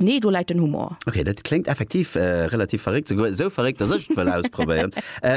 Nee, do läit den Humor. Ok, dat kléngt effektiv relativ verréckt, souguer esou verréckt, dass ech et wëll ausprobéieren.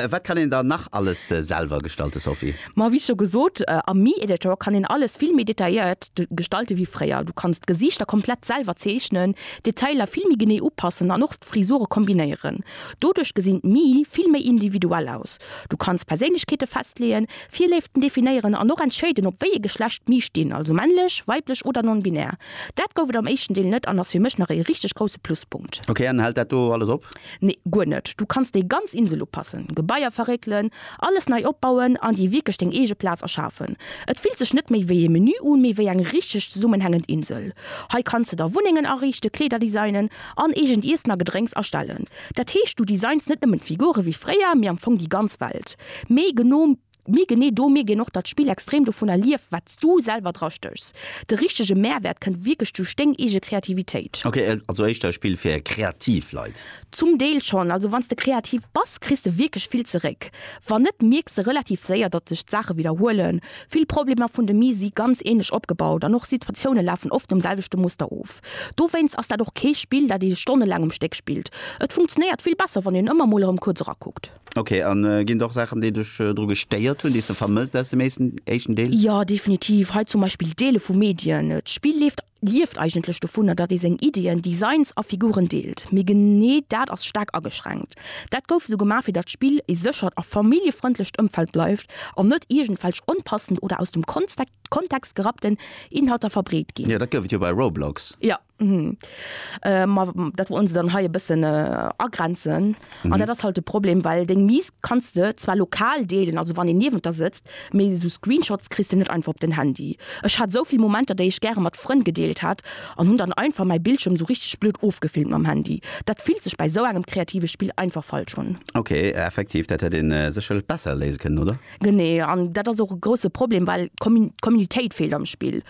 Wat kann een dann nach alles selwer gestalten, Sophie? Ma wéi scho gesot, am Mi-Editor kann een alles vill méi detailléiert gestalten wéi fréier. Du kanns d'Gesiichter komplett selwer zeechnen, d'Detailer vill méi genee upassen an och d'Frisure kombinéieren. Doduerch gesinn d'Mii vill méi individuell aus. Du kanns Perséinlechkeete festleeën, Virléiften definéieren an och entscheeden, op wéi ee Geschlecht mir stinn, also männlech, weiblech oder non-binär. Dat gouf et am éischten Deel net an ass fir mech nach ee richteg grousse Pluspunkt. Ok, an hält dat do alles op? Nee, guer net. Du kanns déi ganz Insel upassen, Gebaier verréckelen, alles nei opbauen an dir wierklech deng eege Plaz erschafen. Et fillt sech net méi wéi ee Menü un, mee wéi eng richteg zesummenhängend Insel. Hei kanns de der Wunnengen ariichten, Kleeder designen an eegent Iessen a Gedrénks erstellen. Dat heescht, du designs net nëmmen d'Figure wéi fréier, mee am Fong déi ganz Welt. Mee geno, mee genee do mierk een och, datt d'Spill extrem dovunner lieft, wat s du selwer dra stéchs. De richtege Mehrwert kënnt wierklech duerch deng eege Kreativitéit. Ok, also éischter e Spill fir kreativ Leit? Zum Deel schonn. Also wann s de kreativ bass, kriss de wierklech vill zeréck. Wann net, mierks de relativ séier, datt sech d'Saache widderhuelen. Vill Problemer vun de Mise si ganz änlech opgebaut an och Situatioune lafen oft nom selwechte Muster of. Dowéinst ass dat och kee Spill, dat ee stonnelaang um Stéck spillt. Et funktionéiert vill besser, wann een ëmmer mol erëm kuerz erakuckt. Ok, a ginn et och Saachen, déi dech dru gestéiert hunn, déi s de vermësst aus dem éischten Deel? Jo, definitiv. Hei zum Beispill Deele vu Medien. D'Spill leeft, lieft eigentlech dovunner, datt ee seng Iddien, Designs a Figuren deelt. Mee genee dat ass staark ageschränkt. Dat gouf esou gemaach, fir datt d'Spill ee séchert a familljefrëndlecht Ëmfeld bleift an net iergendwelch onpassend oder aus dem Kontext Kontext gerappten Inhalter verbreet ginn. Jo, dat gouf et jo bei Roblox. Jo, ma dat wollen se dann hei e bëssen agrenzen. An dat ass halt de Problem, well deng Mise kanns de zwar lokal deelen, also wann een niewent der sëtzt, mee esou Screenshots kriss de net einfach op den Handy. Ech hat esou vill Momenter, déi ech gäre mat Frënn gedeelt hätt, an hunn dann einfach mäi Bildschierm esou richteg blöd ofgefilmt mam Handy. Dat fillt sech bei esou engem kreative Spill einfach falsch un. Ok, effektiv, dat hätt ee sécherlech besser léise kënnen, oder? Genee, an dat ass och e grousse Problem, well d'Communitéit feelt am Spill.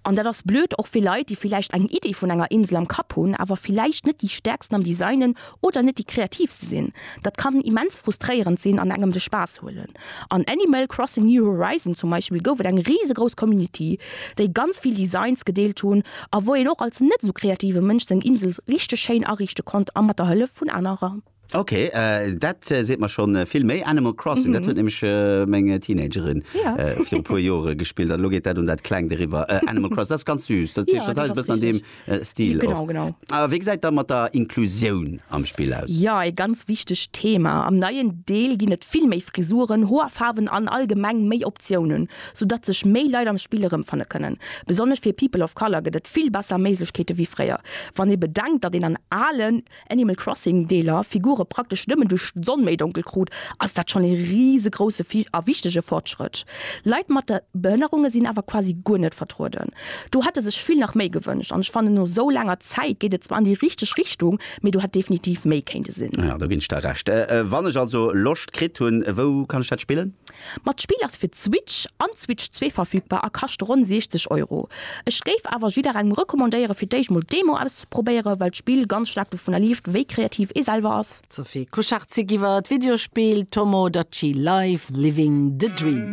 An dat ass blöd och fir Leit, déi villäicht eng Iddi vun enger Insel am Kapp hunn, awer villäicht net déi Stäerksten am Designen oder net déi Kreativste sinn. Dat kann immens frustréierend sinn an engem de Spaass huelen. An Animal Crossing New Horizons zum Beispill gouf et eng risegrouss Community, déi ganz vill Designs gedeelt hunn a wou een och als net esou kreative Mënsch seng Insel richteg schéin ariichte konnt a mat der Hëllef vun anerer. Ok, dat seet mer schonn vill méi. Animal Crossing, dat huet nämlech meng Teenagerin viru e puer Jore gespillt an elo geet dat un dat Klengt eriwwer. Animal Crossing, dat ass ganz süüss. Dat ass e bëssen an deem Stil. Genau, genau. A wéi gesäit da mat der Inklusioun am Spill aus? Jo, e ganz wichtegt Thema. Am neien Deel ginn et vill méi Frisuren, Hoerfaarwen an allgemeng méi Optiounen, sou datt sech méi Leit am Spill erëmfanne kënnen. Besonnesch fir People of Color gëtt et vill besser Méiglechkeete wéi fréier, wann ee bedenkt, datt een an ale Animal Crossing Deeler Figure praktesch nëmmen duerch d'Sonn méi donkel krut, ass dat schonn ee risegrousse a wichtege Fortschrëtt. Leit mat Behënnerunge sinn awer quasi guer net vertrueden. Do hätte sech vill nach méi gewënscht an ech fannen no esou laanger Zäit geet et zwar an déi richteg Richtung, mee do hätt definitiv méi kéinte sinn. Jo, do ginn ech der Recht. Wann ech also Loscht kritt hunn, wou kann ech dat spillen? Ma d'Spill ass fir d'Switch an d'Switch 2 verfügbar a kascht ronn 60 Euro. Ech géif awer jidderengem recommandéieren fir d'éischt mol d'Demo auszeprobéieren. ze probéieren, well d'Spill ganz staark dovunner lieft, wéi kreativ ee selwer ass. D'Sophie Kuchartzik iwwer d'Videospill Tomodachi Life, Living the Dream.